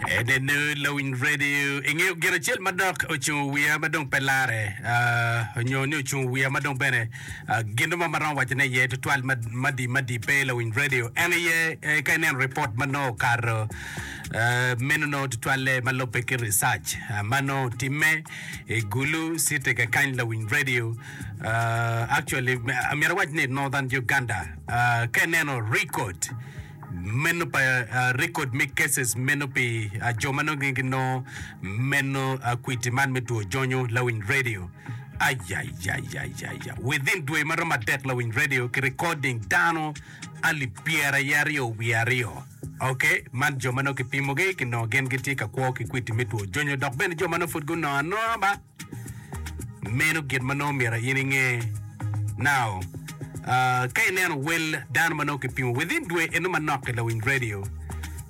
Enene lawiny radio. Ingeyo gin acel ma dok ocungo wiya ma dong pe lare ah, onyo ni ocungo wiya ma dong bene ah, gin ma maromo wacone iye tutwal mad- madi madi pe lawiny radio. En iye eh, ka ineno report ma nongo okato ah, meno nongo tutwalle ma lubbe ki research ah, ma nongo timme i Gulu city kakany lawiny radio. Ah, actually, amyero awac ni Northern Uganda. Ah, ka ineno record meno pa rekod me cases meno pi jo ma nongo ginongo meno kwiti man me two jonyo lawiny radio. Ayayayayaya. Within dwe ma romo adek lawiny radio ki recording dano alip pyeraye aryo wiye aryo. Ok, man jo ma nongo kipimogi kinongo gin gitye ka kwo ki kwiti me two jonyo dok bene jo ma nongo pud gunongo anonga ba. Meno gin ma nongo myero in inge. Now, uh, ka ineno wel dano ma nongo kipimo within dwe eno manok i lawiny radio,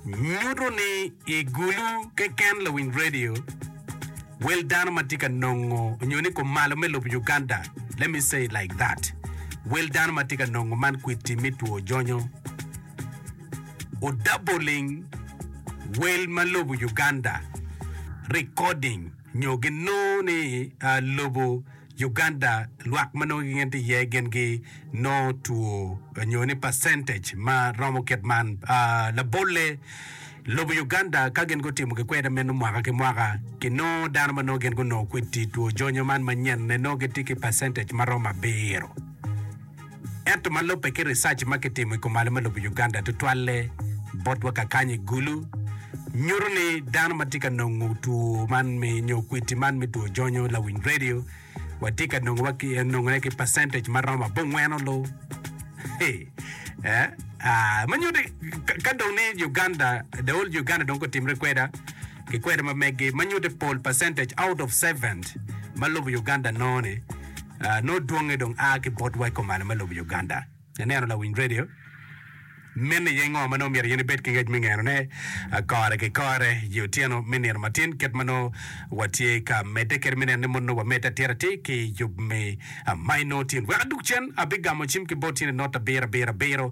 nyuto ni i gulu keken lawiny radio, wel dano ma tye ka nongo nyo ni kumalo me lobo Uganda, let me say like that, wel dano ma tye ka nongo man kwiti me two jonyo, odaboling wel ma lobo Uganda, recording. nyo ginongo ni lobo Uganda lwak ma nongo gin tye iye gin gi nongo two nyo ni percentage ma romo kit man. Labolle, lobo Uganda ka gin gutimo gikweda meno mwaka ki mwaka, ginongo dano ma nongo gin gunongo kweddi two jonyo man manyenne nongo gitye ki percentage ma romo abiro. Ento ma lubbe ki ricac ma kitimo i kumalo me lobo Uganda tutwalle botwa kakanyo i Gulu, nyuto ni dano ma tye ka nongo two man me nyo kwiti man me two jonyo lawiny radio watye ka nongone ki percentage ma romo abongwen olu. Eh, ah, ma nyuto ka dong ni Uganda, the old Uganda dong kotimre kweda, ki kweda ma meggi, ma nyuto pol percentage out of seven ma lobo Uganda nongone. Nongo dwonge dong a ki botwa i kom malo me lobo Uganda. Ineno lawiny redio mene iye ngo ma nongo myero yen ibed ki ngec me ngeno ne kore ki kore i otyeno me nino matin kit ma nongo watye ka medde kede me neno ni mon nongo wamedde atir atir ki yub me maino tin. Wek adug cen, abigamo cim ki boti ni not abiro abiro abiro.